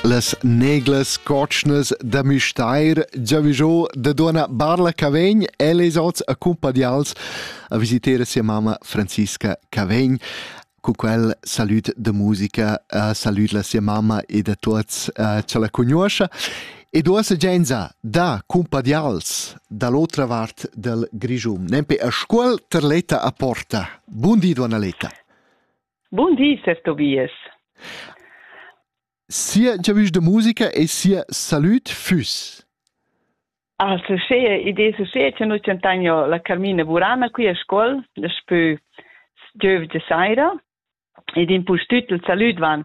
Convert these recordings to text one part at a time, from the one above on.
Las neglas cotschnas da Müstair giavischò da donna Barla Cavegn e les ots accumpadials a visiter sia mamma Franziska Cavegn. Cu quel salut de musica, uh, salut la sia mamma e da tuots uh, ce la cugnuoscha. E do segenza da cumpadials dall'otra vart del Grigium, nempe a scuol ter leta a porta. Bundi, donna Leta. Bun di, ses Tobias. Sia giavisch da musica e sia salüd füss. Ah, se schea idee se schea che noi centagno la Carmina Burana qui a scol, daspö giöv de saira, ed in pustüt il salüd van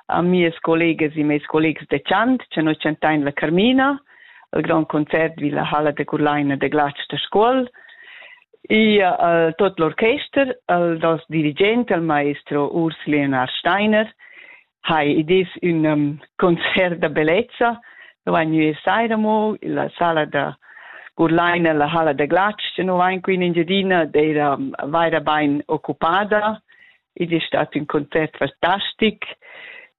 a mies collegas e meis collegs de chant, che noi centagno la Carmina, il grand concert vi la halla de Curlaina de glatsch da scuol e uh, tot l'orchester el dels dirigent el maestro Urs Leonard Steiner ha idis un um, concert da bellezza wenn wir seid mo la sala da Curlaina la halla de glatsch no vain qui in Engiadina d'era vaira bain occupada ed è stat un concert fantastic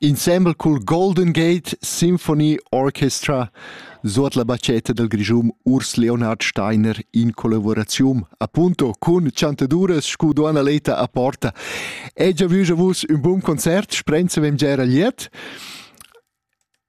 Insembel cul Golden Gate Symphony Orchestra suot la batschetta dal Grischun Urs Leonhard Steiner in collavuraziun appunto cun chantaduras scu Duonna Leta a Porta. E già vus ün bun concert, sprenzavem gia era glied.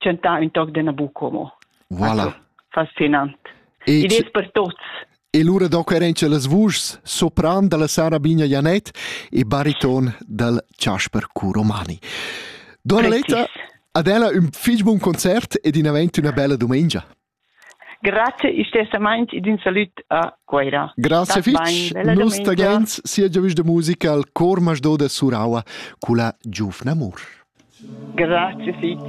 tschentà ün toc d'ena buca mo. Voilà. Fascinant. E Id es per tuots. E lura doc eran che las vuschs sopran dalla Sarabina Janet e bariton dal Chasper Curomani. Donna Letta, ad ella ün fich bun concert ed in avent üna bella dumengia. Grazia istessamaint ed ün salüd a Cuera. Grazie fich. Nus tagains sia giavüsch da musica al Chor Masdò da Suraua culla giuvna amur. Grazie fich.